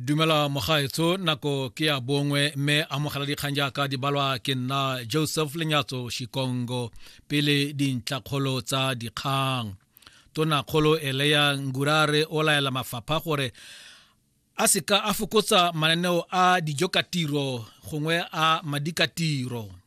dumela mogaetsho nako ke ya bongwe mme amogela dikgang jaaka di balwa ke nna joseph lenyatso shikongo pele dintlakgolo tsa dikgang tonakgolo eleya ngurare o laela mafapha gore a seka a fokotsa mananeo a dijo ka tiro gongwe a madikatiro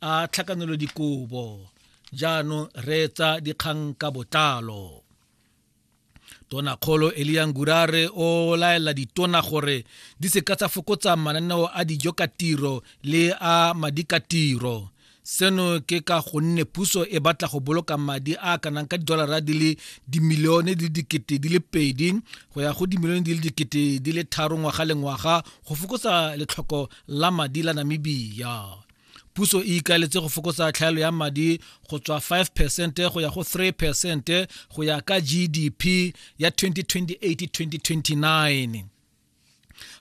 a tlhakanelodikobo jaanong reetsa dikgang ka botlalo tonakgolo eliang gurare o laela ditona gore di seka tsa fokotsa mananeo a dijo ka tiro le a madi ka tiro seno ke ka gonne puso e batla go boloka madi a kanang ka didolara di le dimilione di le dikete di le pedi go ya go dimilione di le dikete di le tharo ngwaga le ngwaga go fokotsa letlhoko la madi la namibia puso e ikaletse go fokotsa tlhaelo ya madi go tswa 5 percent go ya go 3 percent go ya ka gdp ya 2028-2029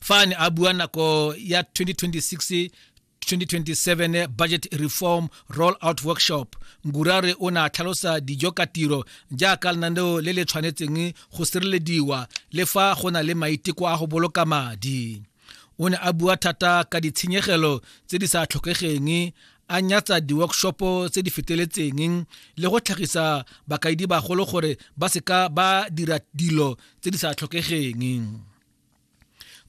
fa ne a bua nako ya 2026 2027 budget reform rollout workshop ngurare o ne a tlhalosa dijo ka tiro jaaka lenaneo le le tshwanetseng go sirelediwa le fa go na le maiteko a go boloka madi o ne a bua thata ka ditshenyegelo tse di sa tlhokegeng a nyatsa di-workshopo tse di feteletseng le go tlhagisa bakaedi bagolo gore ba seka ba dira dilo tse di sa tlhokegeng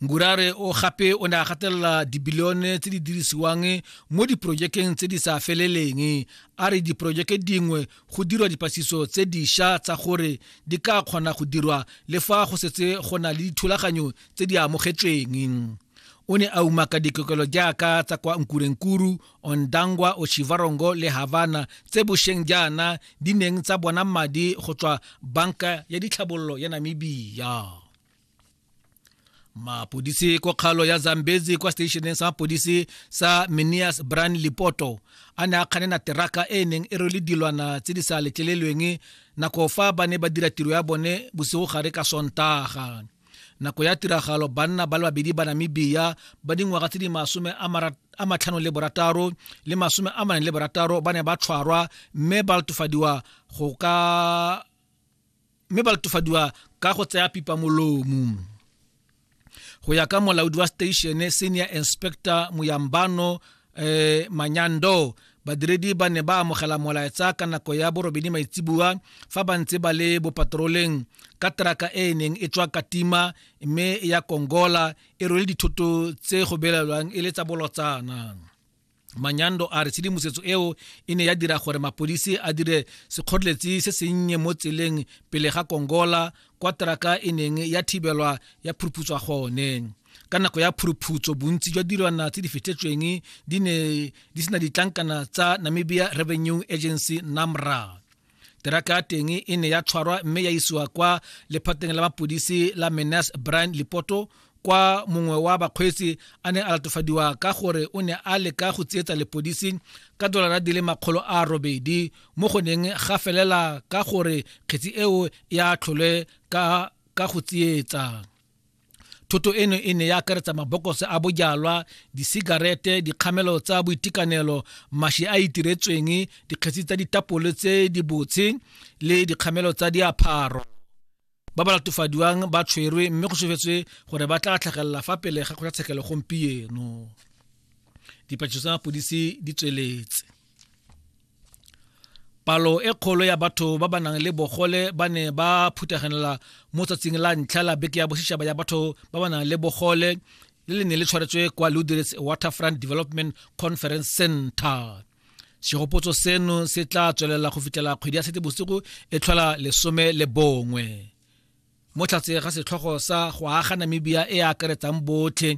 ngurare o gape o ne a gatelela dibilione tse di dirisiwang mo diporojekeng tse di sa feleleng a re diporojeke dingwe go dirwa dipasiso tse diša tsa gore di ka kgona go dirwa le fa go setse go na le dithulaganyo tse di amogetsweng o ne a umaka dikokelo jaaka tsa kwa nkurenkuru ondangwa oshivarongo le havana tse bosheng jaana di neng tsa bona madi go tswa banka ya ditlhabololo ya namibia mapodisi ko kgalo ya zambezi kwa stationeng sa mapodisi sa minias bran lipoto a ne a kganena teraka e neng e rwele dilwana tse di sa letlelelweng nako fa ba ne ba dira tiro ya bone bosigo gare ka sontaga nako ya tiragalo banna ba le babedi ba namibia ba dingwaga tse di masome a matlhano le borataro le masome a maneng le borataro ba ne ba tshwarwa mme ba latofadiwa go ka mme ba latofadiwa ka go tsaya pipa molomo go ya ka molaodi wa station senior inspector moyambano eh, manyando badiredi ba ne ba amogela molaetsa ka nako ya borobedi maitsibua fa ba ntse ba le bopatroleng ka teraka e e neng e tswa katima mme ya kongola e rwele dithoto tse go belelwang e le tsa bolotsana manyando a re tshedimosetso eo e ne ya dira gore mapodisi a dire sekgoreletsi se sennye mo tseleng pele ga kongola kwa teraka e neng ya thibelwa ya phuruphutswa gone ka nako ya phuruputso bontsi jwa dilwana tse di fetletsweng di ne di sena ditlankana tsa namibia revenue agency namra teraka ya teng e ne ya tshwarwa mme ya isiwa kwa lephateng la mapodisi la menas brian lipoto kwa mongwe wa bakgweetsi a ne a latofadiwa ka gore o ne a leka go tsietsa lepodisi ka dolara di le makgolo a robedi mo go neng ga felela ka gore kgetsi eo ya tlholwe ka ka go tsietsa thoto eno e ne ya akaretsa mabokose a bojalwa disigarete dikgamelo tsa boitekanelo mashi a itiretsweng dikgetsi tsa ditapole tse di botshe le dikgamelo tsa diapharo ba ba latofadiwang ba tshwerwe mme go sofetswe gore ba tla tlhagelela fa pele ga kgotlatshekelo gompieno dipatsiso tsa mapodisi di tsweletse palo e kgolo ya batho ba ba nang le bogole ba ne ba phuthaganela mo tsatsing la ntlha la beke ya bosetšhaba ya batho ba ba nang le bogole le le ne le tshwaretswe kwa ludirets waterfront development conference center segopotso seno se tla tswelela go fitlhela kgwedi ya sete bosigo e tlhola lesome le bongwe mo tlhatse ga setlhogo sa go aga namibia e akaretsang botlhe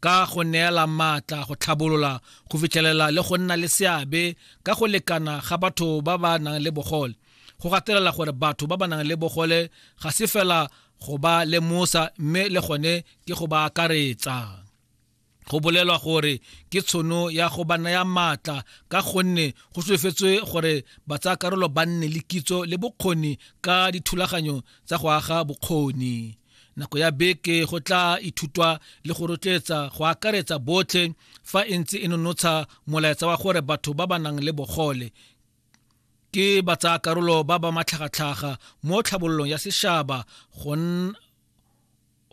ka go neela maatla go tlhabolola go fitlhelela le go nna le seabe ka go lekana ga batho ba ba nang le bogole go gatelela gore batho ba ba nang le bogole ga se fela go ba lemosa mme le gone ke go ba akaretsa go bolelwa gore ke tshono ya go ba naya maatla ka gonne go solofetswe gore ba tsaya karolo ba nne le kitso le bokgoni ka dithulaganyo tsa go aga bokgoni nako ya beke go tla ithutwa le go rotloetsa go akaretsa botlhe fa e ntse e nonotsha molaetsa wa gore batho ba ba nang le bogole ke ba tsaya karolo ba ba matlhagatlhaga mo tlhabololong ya seshaba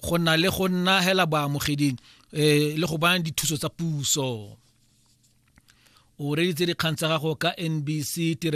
go na le go nna hela baamogeding um le go bana dithuso tsa puso o reditse dikgang tsa gago ka nbc